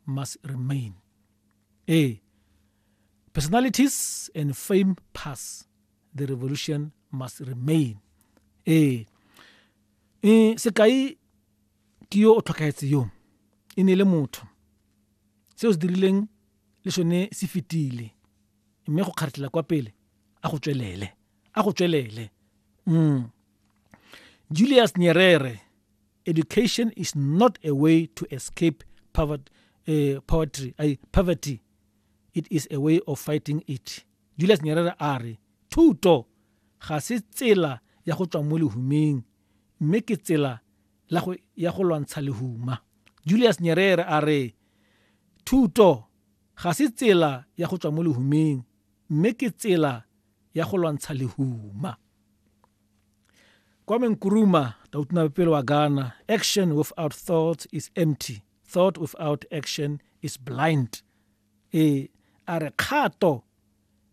must remain. A. Personalities and fame pass. The revolution must remain. A. E, sekai ke yo o tlhokaetse yo e ne le motho se o se dirileng le sone se fetile mme go kgaretlela kwa pele a go tswelele a go tswelele mm. julius nyerere education is not a way to escape poverty, uh, eh, poverty, uh, poverty it is a way of fighting it julius nyerere a re thuto ga se tsela ya go tswa mo lehumeng mme ke tsela ya go lwantsha lehuma julius nyerere a re thuto ga se tsela ya go tswa mo lehumeng mme ke tsela ya go lwantsha lehuma Kwame Nkrumah tautuna pele wa Ghana action without thought is empty thought without action is blind e a re kgato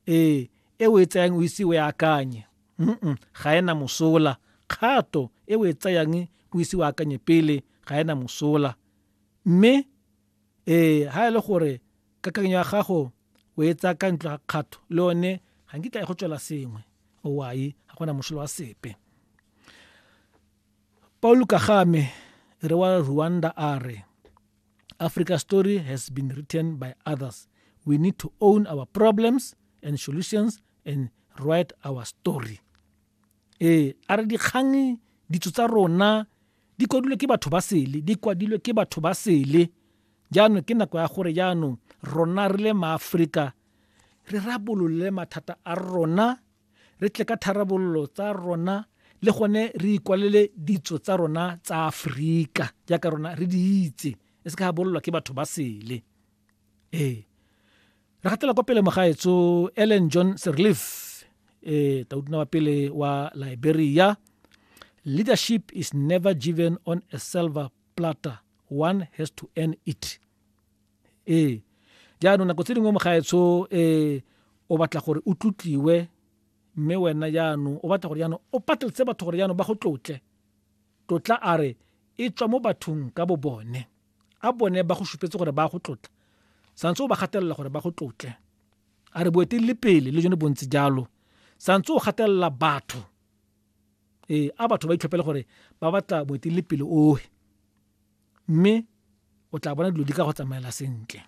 e e o e tsayang o ise o e akanye mm ga ena mosola kgato e o e tsayang o ise o akanye pele ga ena mosola mme Ee, ha e le gore kakanyo ya gago o e tsaya ka ntlo ga kgatho le one ga nkitla e go tswela sengwe owai ga gona mošolo wa sepe paul kagame re wa rwanda a re africa story has been written by others we need to own our problems and solutions and write our story ee a re dikgang ditso tsa rona Di kwadilwe ke batho ba sele, di kwadilwe ke batho ba sele. Jaanong ke nako ya gore jaanong rona re le maaforika re rabolole mathata a rona re tle ka tharabololo tsa rona le gone re ikwalele ditso tsa rona tsa aforika jaaka rona re di itse e se ka bololwa ke batho ba sele. ee re gatela kwa pele mogaetso ellen john serleaf eh tautona wa pele wa liberia leadership is never given on a silver platter one has to earn it ee jaanong nako tse dingwe mogaetsho eh o batla gore o tlotliwe mme wena jaanong o batla gore jaanong o pateletse batho gore jaanong ba go tlotle tlotla a re e tswa mo bathong ka bo bone A bone ba go supetse gore ba go tlotla? Santse o ba gatelela gore ba go tlotle. A re boeteledipele le jone bontsi jalo. Santse o gatelela batho. Ee, a batho ba itlhophele gore ba batla boeteledipele ohe. Mme o tla bona dilo di ka go tsamaela sentle.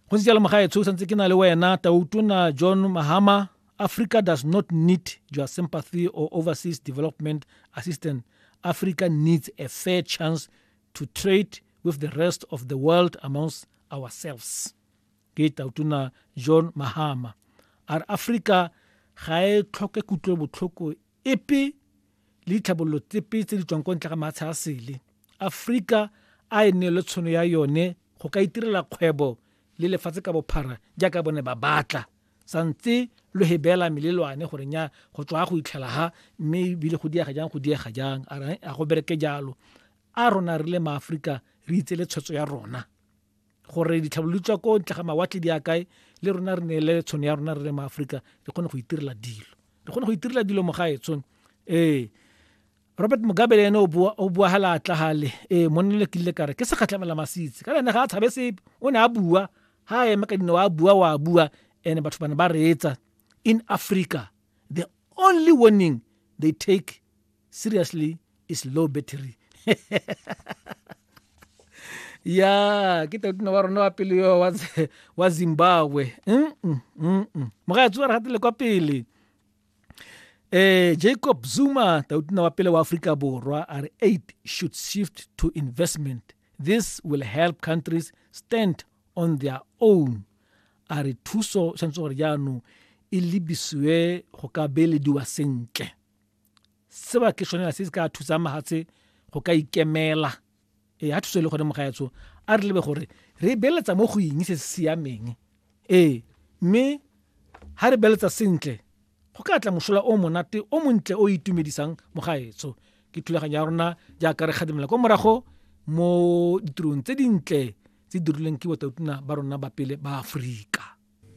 go ntse jalo mogaetsho o santse ke na le wena tautona john mahama africa does not need your sympathy or overseas development assistance africa needs a fair chance to trade with the rest of the world amongst ourselves ke tautona john mahama a re africa ga e tlhoke kutlobotlhoko epe le ditlhabololo tsepe tse di tswang ko ntle ga maatsha a sele. Aforika a e neelwe tshono ya yone go ka itirela kgwebo le lefatshe ka bophara jaaka bone ba batla sa ntse lo he beela melelwane gore nya go tswa go itlhela ha mme ebile go diega jang go diega jang a go bereke jalo a rona re le maaforika re itse le tshwetso ya rona gore ditlhabololo tswa ko ntle ga mawatle di a kae le rona re neele tshono ya rona re le maaforika re kgone go itirela dilo re kgone go itirela dilo mo gae tshono ee robert mugabe le ene o bua ga laatla gale ee monne le kile kare ke segatlhamela masitse ka lene ga a tshabe sepe o ne a bua ga a eme ka dino wa bua wa bua and batho bane ba reetsa in africa the only warning they take seriously is low battery ya ke totino wa rona wa pele yo wa zimbabwe moga tsoa re gatile kwa pele eh jacob zuma totino wa pele wa aforika borwa a re aid should shift to investment this will help countries stand on their own a re thuso tshwanetse gore jaanong e lebisiwe go ka beelediwa sentle seo ke sone se se ka thusang mahatshe go ka ikemela ee ga thuso e le gone mogaetsho a re lebe gore re beletsa mo go eng se se siameng ee mme ga re beletsa sentle go ka tla mosola o monate o montle o itumedisang mogaetsho ke thulaganyo ya rona jaaka re kgadimela kwa morago mo ditirong tse dintle tse dirilweng ke botautuna ba rona ba pele ba aforika